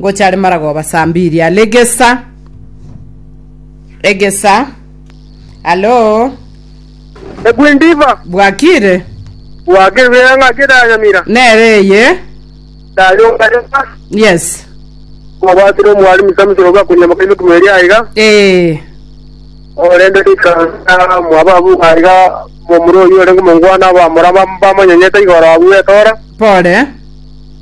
Ngocha are maragoba saa mbiri are egesa egesa alo Ekwindiva, bwakire bwakirwea ng'aki ndanyamira, nere eye ndayongarema, yes obwatire omwari misamisire obe akonyama kaime kumeri aiga, ee orende rikana mwaba abu aiga momura oyo orenge omongwana abamura bam- bamonyonyete igoro abu etora, pore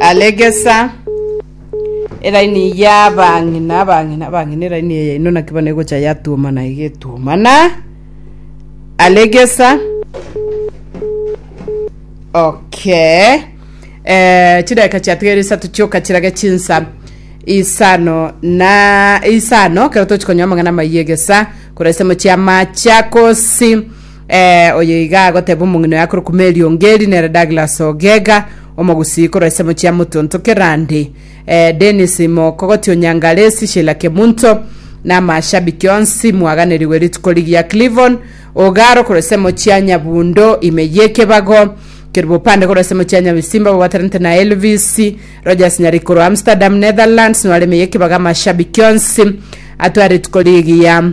Aregesa eraini y'abang'ina, abang'ina, abang'ina, eraini eye yaino naki bono egocha yatuomana iga etuomana. Aregesa. Okay. Eh, chidakika chiatigere isato chioka chirage chinsa isano na isano kero tochikonyoa amang'ana amaiyo egesa korwa isemo chia Machakos Ee, oyo iga agoteba omong'ina oye akorokwa Mary Ongeri nere Douglas Ogega, omogusii korwa ensemo chia Mutuntu Kirandi, ee, Dennis Mokogoti o Nyangalesi, Sheila Kemunto, na amashabiki onsi, mwaganerigwe rituko rigiya Clivon Ogaro korwa ensemo chia Nyabundo ime y'ekebago, Kerubo Opande korwa ensemo chia Nyabisimba babwatanete na Elvis Rogers Nyariki korwa Amsterdam, Netherlands, nware ime y'ekebago amashabiki onsi atware rituko rigiya.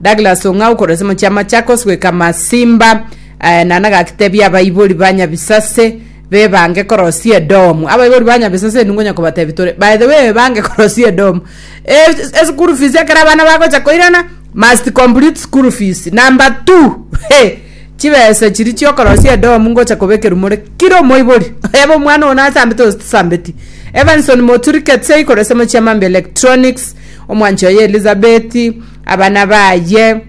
Douglas Ong'au korwa ase omochie wa Machakos goika Masimba eh, na nagakitebia abaibori ba Nyabisase bebange korosia edomu abaibori ba Nyabisase ningo nyakobatebi tore by the way ebange korosia edomu E- esukuru fees ekero abana bagocha koirana must complete school fees number two he chibesa chiri chiokorosia edomu ngocha kobekerwa more kira omoibori ebe omwana one asambete gose tisambeti Evanson Moturi Ketsei korwa ase omochie wa Mambi Electronics omwanchi oye Elizabeth Abana baye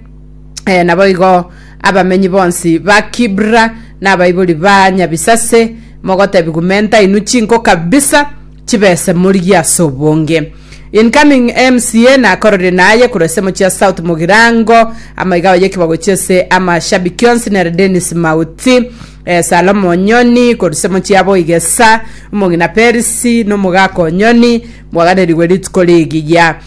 naboigo abamenyi bonsi ba Kibra nabaibori ba Nyabisase, mogotebia gumenta inwe chinko kabisa chibese morigie ase obonge. Incoming MCA nakororie naye korwa ase mochia South Mugirango amaiga abaye ekibago gochia ase amashabiki onsi nere Dennis Mauti, Salome Onyoni korwa ase mochia Boigesa, omong'ina Perisi na omogaka Onyoni, mwaganeri we rituko rigiya.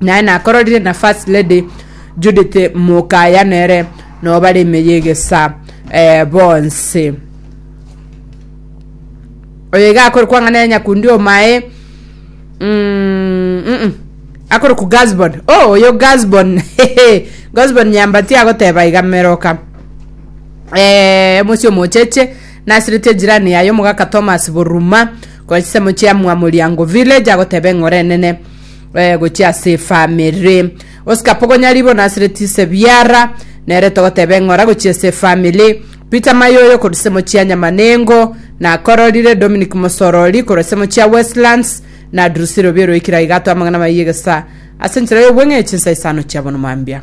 naye nakororire na first lady judith mokaya nere no bare ime yegesa eh, bonse oyo iga akore kwang'ana ya nyakundi omae mm, mm, akore ku gasbon oh oyo gasbon gasbon nyambati agoteba iga meroka eh, mosi omocheche Nasiretie jirani yaye omogaka Thomas Boruma konya chisemo chia Mwamoriango village agoteba eng'ora enene eh, gochia ase efamiri. Oscar Pogonya ribo nasiretie Sebiara nere togoteba eng'ora gochia ase efamiri. Peter Mayoyo korwa chisemo chia Nyamanengo nakororire Dominic Mosorori korwa chisemo chia Westlands na Drusi Robiero oikire aiga atoe amang'ana maiye gesa ase enchera y'obweng'e chinsa isano chia bono mambia.